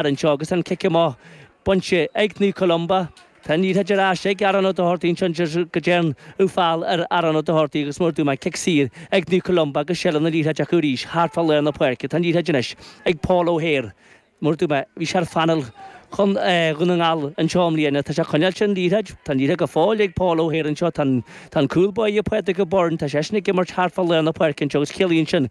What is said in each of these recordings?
Ar an seo agus an cic amach bainte ag Naomh Columba, tá an liathróid ar ais ag Aaron Ó Dochartaigh anso anso anso go dtéann an feall ar Aaron Ó Dochartaigh agus mar a dúirt mé cic saor ag Naomh Columba agus seilbh na liathróide acu arís thart fá lár na páirce. Tá an liathróid anois ag Paul Ó hAodhair. Mar a dúirt mé, bhí sé ar phainéal Dhún na nGall anso i mbliana. Tá sé ag coinneáil sé an liathróid. Tá an liathróid go fóill ag Paul Ó hAodhair anso. Tá an cúl báire ag Padraig Ó Byrne. Tá seisean ag imirt thart fá lár na páirce anso agus ciallaíonn sin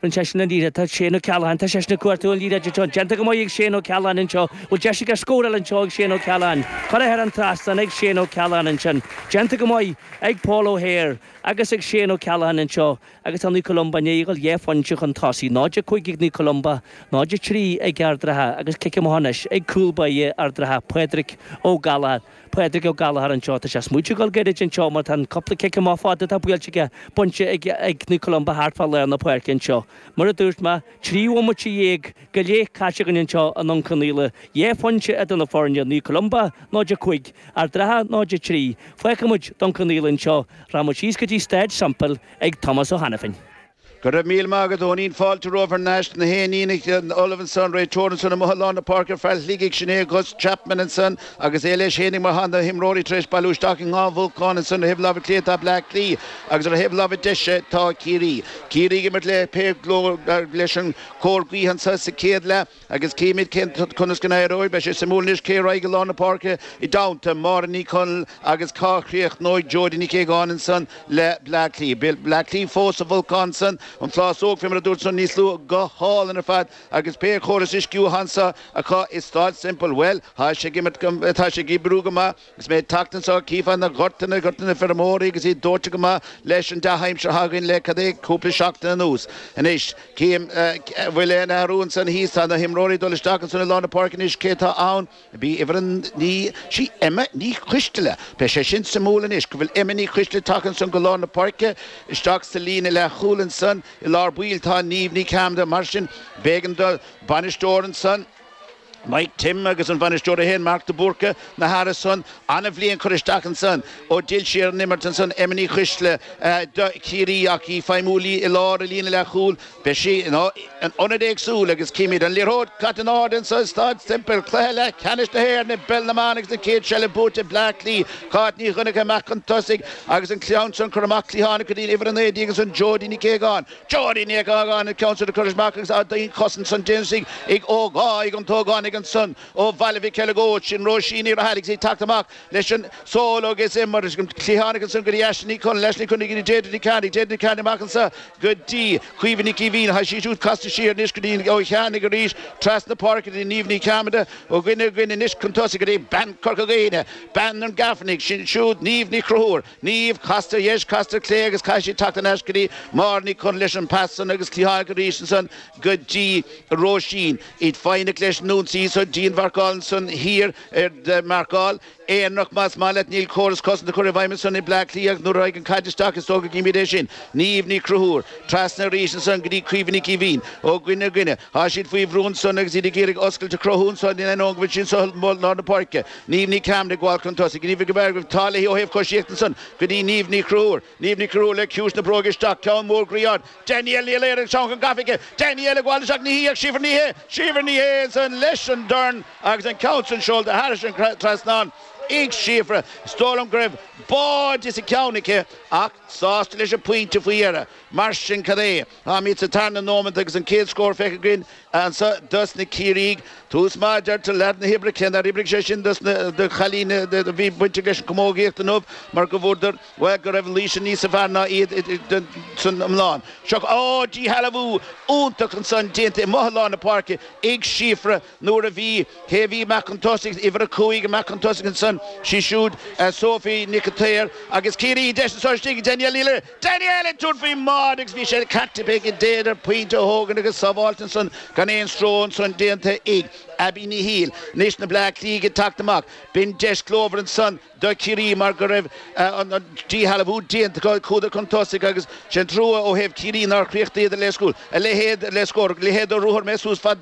An seisean an liathróid atá ag Shane O'Callaghan? Tá seisean ag cuartú an liathróid anseo déanta go maith ag Shane O'Callaghan anseo. Bhfuil deis aige scóráil anseo ag Shane O'Callaghan? Curtha thar an trasnán ag Shane O'Callaghan ansin. Déanta go maith ag Paul O'Hare agus ag Shane O'Callaghan anseo agus tá Naomh Columba i ndiaidh dul dhá phointe chun tosaigh. 0 5 ag Naomh Columba, 0 3 ag Ard an Rátha agus cic amach anois ag cúl báire Ard an Rátha, Pádraic Ó Gallagher. Pádraig Ó Gallagher anseo. Tá sé ag smaoitiú dul gairid anseo mar tá an cúpla cic amach fada atá buailte aige bainte ag Naomh Columba thart fá lár na páirce anseo. Mar a dúirt mé, trí bhomaite déag go leith caite againn anseo i nDún Cionnaola, dhá phointe idir na foirne, Naomh Columba 0 5, Ard an Rátha 0 3. Fágfaimid Dún Cionnaola anseo, rachaimid síos go dtí Staid Semple chuig Tomás Ó hAiniféin. Go raibh míle maith agat, a Eoinín. Fáilte romhat thar n-ais. Gach aon ní ullamh anso, an réiteoir ansan amuigh i lár na páirce an fear ó Shligigh, sin é Gus Chapman ansan agus é leis fhéinig mar tá na himreoirí tar éis bailiú isteach in dhá bhulcán ansan ar thaobh láimhe clé tá Bleá Cliath agus ar thaobh láimhe deise tá Ciarraí. Ciarraí ag imirt le pé glór leis an cóir gaoithe anso sa céad leath. Agus cífimíd cén t-, conas go n-éireoidh. Beidh sé suimiúil anois cé a raghaidh i lár na páirce i dteannta Máire Ní Chonaill agus cá chríochnóidh Jodie Nic Aogáin ansan le Bleá Cliath. Bleá Cliath fós sa bhulcán san, an phlásóg fé mar a dúirt san, níos luaithe, go hálainn ar fad agus pé chóras uisciúcháin so acu i Staid Semple, bhuel, tá sé ag imirt go, tá sé ag oibriú go maith. Agus mé ag teacht anso, cífeá na gorta, na gorta ag na feirmeoirí agus iad dóite go maith leis an dea-aimsir atá againn le, cad é, cúpla seachtain anuas. Anois, cím, an bhfuil aon athrú ansan thíos, tá na himreoirí ag dul isteach ansan i lár na páirce anois, cé tá ann, a bhí uimhir a naoi, sí Emma Ní Choisteala, beidh sé sin suimiúil anois, go bhfuil Emma Ní Choisteala ag teacht ansan go lár na páirce, isteach sa líne leath chúil ansan, i lár baill tá Niamh Ní Chearmada, mar sin, b'éigean don bhainisteoir ansan, Mike Tim agus an bainisteoir a haon Mark de Búrca, na hathruithe san. An-bhliain cur isteach ansan ó d'fhill sí ar an imirt ansan Emma Ní Choisteala do Chiarraí ach í ag feidhmiú léi i lár, i líne leath chúl. Beidh sí in ionad éagsúil agus címid an liathróid caite in airde ansan i Staid Semple. Cluiche leath ceannais na hÉireann i bpeil na mban agus an chéad seilbh buaite ag Bleá Cliath. Cáit Ní Dhonnchadha amach chun tosaigh agus an ceann san curtha amach cliathánach go dtí'n uimhir a naoi déag ansan Jodie Nic Aogáin, Jodi Nic Aogáin an ceann sin a chur isteach agus dianchosaint ansan déanta ag ógá ag an ógánach ansan ó Bhaile Mhic Eileagóid sin Róisín Ní Rathailligh is í ag teacht amach leis anso agus imirt cliathánach ansan go dtí Aisling Ní Chonaill Aisling Ní Chonaill go dtí Deirdre Ní Chearnaigh Deirdre Ní Chearnaigh amach anso go dtí Caoimhe Nic Aoibhín tá sí siúd casta siar anois go dtí an Ó Chearnaigh arís trasna páirce go dtí Niamh Ní Chearmada ó dhuine go duine anois chun tosaigh go dtí bean Corca Dhuibhne bean an Gaibhneachaigh sin siúd Niamh Ní Chonchúir Niamh, casta ar dheis, casta ar clé agus caithfidh sí teacht thar n-ais go dtí Máire Ní Chonaill leis an pas san agus cliathánach arís ansan go dtí Róisín. Iad foighneach leis nú anso so dianmharcáil ansan thiar ar marcáil aonarach, más maith leat níl córas cosanta curtha i bhfeidhm ansan ag Bleá Cliath ach nuair a raghaidh an chaid isteach is dócha go gcímíd é sin. Niamh Ní Chonchúir. Trasna arís ansan go dtí Caoimhe Nic Aoibhín. Ó dhuine go duine. Thá siad faoi bhrú ansan agus iad ag iarraidh oscailt a chruthú anso in ainneoin go bhfuil sí anso thall lár na páirce. Niamh Ní Chearmada ag gabháil chun tosaigh, Niamh ag obair go tall léi ó thaobh choisíochta ansan go dtí Niamh Ní Chonchúir. Niamh Ní Chonchúir le ciumhais na bróige isteach, ceann mór groí ard. Danielle Ní Laoire ansan gafa aici. Danielle ag gabháil isteach, ní hí ach Síofra Ní Shé. Síofra Ní Shé ansan leis an dorn agus an ceann san seolta thairis an trasnán. Ag Síofra, is dóigh liom go raibh báide sa cheann aici ach sásta leis an pointe faoi dheireadh. Mar sin cad é. Táimíd sa tarna nóimeant agus an céad scór feicthe againn annso dos na Ciarraígh. Tús maith a deirtear leath na hoibre. Cé nár oibrigh sé sin dos na cailíní a bhí bainteach leis an camógaíocht inniu mar go bhfuaradar, bhuel, go raibh Laoise níosa fearr ná iad san iomlán. Seo díshealbhú iontach ansan déanta i mbrothall lár na páirce ag Síofra. Nuair a bhí, cé a bhí amach chun tosaigh, uimhir a cúig amach chun tosaigh ansan, sí siúd Sophie Nic a tSaoir agus Ciarraí a deis anso istigh, Danielle Ní Laoire, Danielle ag tabhairt faoin mbáide agus bhí sé ceart aici b'fhéidir pointe a thógaint agus sábháilte ansan gan aon stró ansan déanta ag Abbie Ní Shiail. Anois na Bleá Cliathigh ag teacht amach. B'in deis glórmhar ansan do Chiarraí mar go raibh an díshealbhú déanta acu chuadar chun tosaigh agus sé'n trua ó thaobh Chiarraí nár chríochnaíodar le a leithéid le scór. Leithéid do ruathar mé suas fad